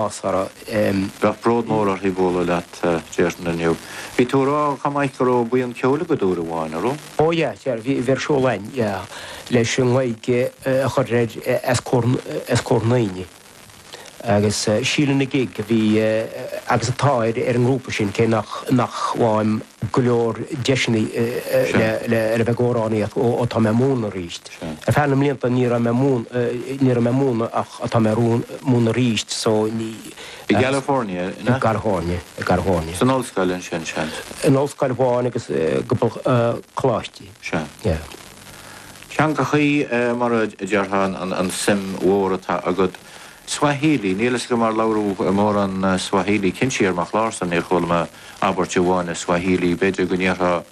Bheadh bród mór uirthi bualadh leat, a déarfainn, inniu. Bhí tú ag rá chomh maith go raibh buíon ceoil agat uair amháin, an raibh? Ó yeah, dear, bhí, bhí ar siúl a'inn, yeah, leis an nGaeilge a chur ar, as comhair, as comhair na ndaoine. Agus Síle na Gig a bhí agus atá ar, ar an ngrúpa sin, cé nach, nach bhfaighim go leor deiseanna le, le, le bheith ag amhránaíocht ó, ó tá mé ag múineadh aríst. Ar feadh na mblianta ní raibh mé ní raibh mé ag múineadh ach tá mé ag múineadh arís so ní. I gCalifornia, an ea? I gCalifornia, i gCalifornia. San ollscoil ansin, seans? In ollscoil amháin agus cúpla coláistí. Sea. Yeah. Teangachaí, mar a déarfá, an suim mhór atá agat. Swahili, níl 'fhios agam ar labhraíodh mórán Swahili. Cinnte ar mo chlársa níor chuala mé abairt amháin i Swahili. B'fhéidir go ndéarfá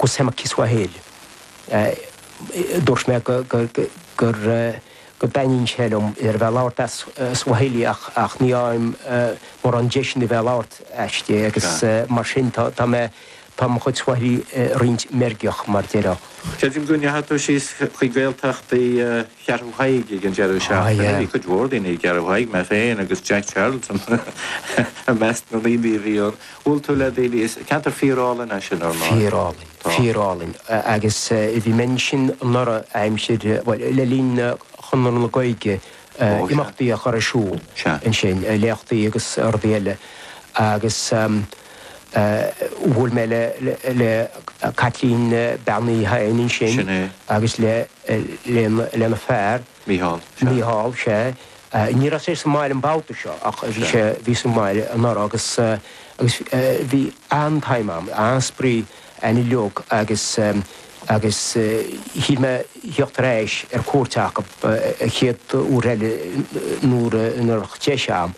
Kusema Kiswahili, a dúirt mé go dtaitníonn sé liom a bheith ag labhairt as Swahili ach ní fhaighim mórán deiseanna a bheith ag labhairt aisti agus mar sin tá mé tá mo chuid Swahili roinnt meirgeach mar déarfá. Creidim go ndeachaigh tú síos chuig Gaeltacht Cheathrú Thaidhg ag an deireadh seachtaine, bhí cuid mhór daoine i gCeathrú Thaidhg, mé féin agus Jack Charlton i measc na ndaoine a bhí ann. Bhuail tú le daoine i gceantar fíorálainn ansin, ar ndóigh? Fíorálainn. Tá. Fíorálainn. Agus bhí mé ansin anuraidh, aimsir, bhuel, le linn Chonradh na Gaeilge, imeachtaí a chur ar siúl ansin, léachtaí agus rudaí eile. Agus bhuail mé le Caitlín Bean Uí Sheighin ansin agus lena fear. Mícheál, Sea. Mícheál, Sea. Ní raibh sé sa mbaile an babhta seo ach bhí sé, bhí sa mbaile anuraidh agus, agus bhí an-time ann, an-spraoi, an-joke agus, agus shíl mé thíocht ar ais ar cuairt acub an chéad uair eile nuair, nuair a bheadh deis a'm,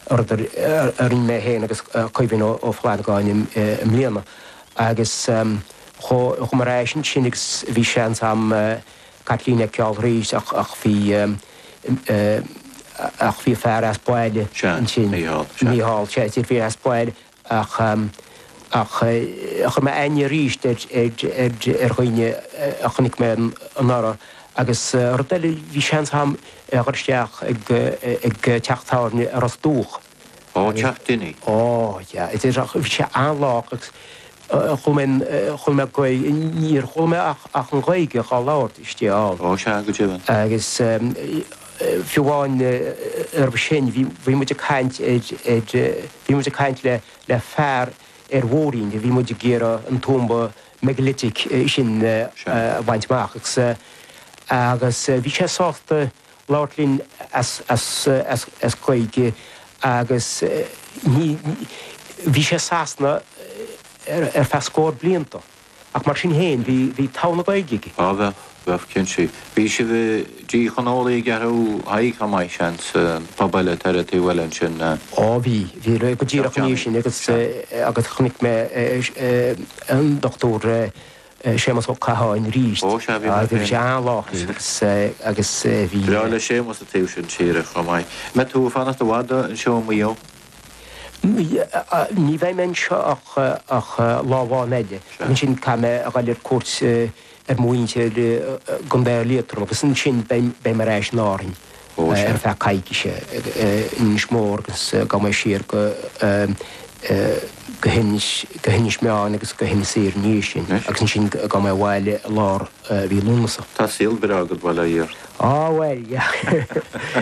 rud a, a rinne mé féin agus Caoimhín Ó, Ó Flannagáin i, i mbliana agus chuaigh, chuaigh mé ar ais ansin agus bhí seans a'm, Caitlín a fheiceáil arís ach ach bhí ach bhí a fear as baile ansin. Mícheál, sea. Mícheál, sea, is fíor, fear as baile ach ach chuir mé aithne arís ar ar ar ar dhaoine a chonaic mé anuraidh agus rud eile, bhí seans agam a dhul isteach ag ag teach tábhairne i Ros Dumhach. Ó, teach Denny. Ó, yeah, a deir sé, bhí sé an-lách agus chuala mé, chuala mé Gaeilge, níor chuala mé ach, ach an Ghaeilge dhá labhairt istigh ann. Ó, sea, go deimhin. Agus fiú amháin roimhe sin, bhí, bhí muid ag caint ar, ar, bhí muid ag caint le, le fear ar bhóithrín, bhí muid ag iarraidh an tuamba megalithic sin a bhaint amach agus, agus bhí sé sásta labhairt linn as Gaeilge agus bhí sé i Sasana ar feadh scór blianta ach mar sin féin bhí togha na Gaeilge aige. Á bheadh, bheadh, cinnte. Bhí sibh i dTigh Chon Órlaigh i gCeathrú Thaidhg chomh maith, seans, pub eile thar an taobh eile ansin. Á bhí, bhí, go díreach ina dhiaidh sin agus chonaic mé an Dr. Séamus Ó Catháin arís. Ó, sea, bhí mé féin. Bhí sé an-láidir agus bhí. Bhreá le Séamus an taobh sin tíre chomh maith. An mbeidh tú ag fanacht i bhfad anseo i Maigh Eo? Ní bheidh mé anseo ach lá amháin eile. Ansin caithfidh mé a dhul ar cuairt ar mo mhuintir i gContae Liatroim agus ansin beidh mé ar ais in Árainn. ar feadh coicíse in Inis Mór agus gabhfaidh mé siar go hInis Meáin agus go hInis Oírr ina dhiaidh sin agus ansin gabhfaidh mé abhaile i lár mhí Lúnasa. Tá saol breá agat, bail ó Dhia ort! Á, bhuel, yeah.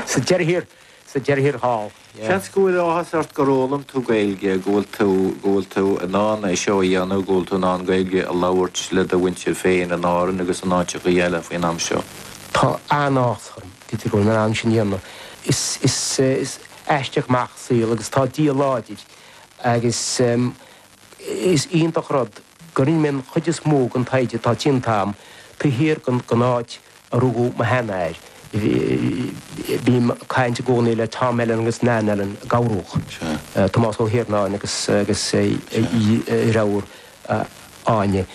Sa deireadh thiar thall. Seans go bhfuil áthas ort gur fhoghlaim tú Gaeilge, go bhfuil tú, go bhfuil tú in ann é seo a dhéanamh, go bhfuil tú in ann Gaeilge a labhairt le do mhuintir féin in Árainn agus in áiteachaí eile faoin am seo. Tá an-áthas orm go bhfuil mé in ann sin a dhéanamh. Is, is, is aisteach an mac an saol agus tá Dia láidir agus. Is iontach rud go rinne mé an chuid is mó den taighde atá déanta agam taobh thiar den áit a rugadh mo sheanathair. Bím ag caint i gcónaí le Tom Ellan agus Nan Ellan, i gCill Rónáin, Tomás Ó hIarnáin agus a dheirfiúr Áine,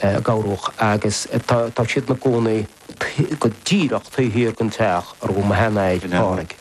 Gabhrúch, agus tá siad ina gcónaí go díreach taobh thiar den teach a rugadh mo sheanathair, Pádraig.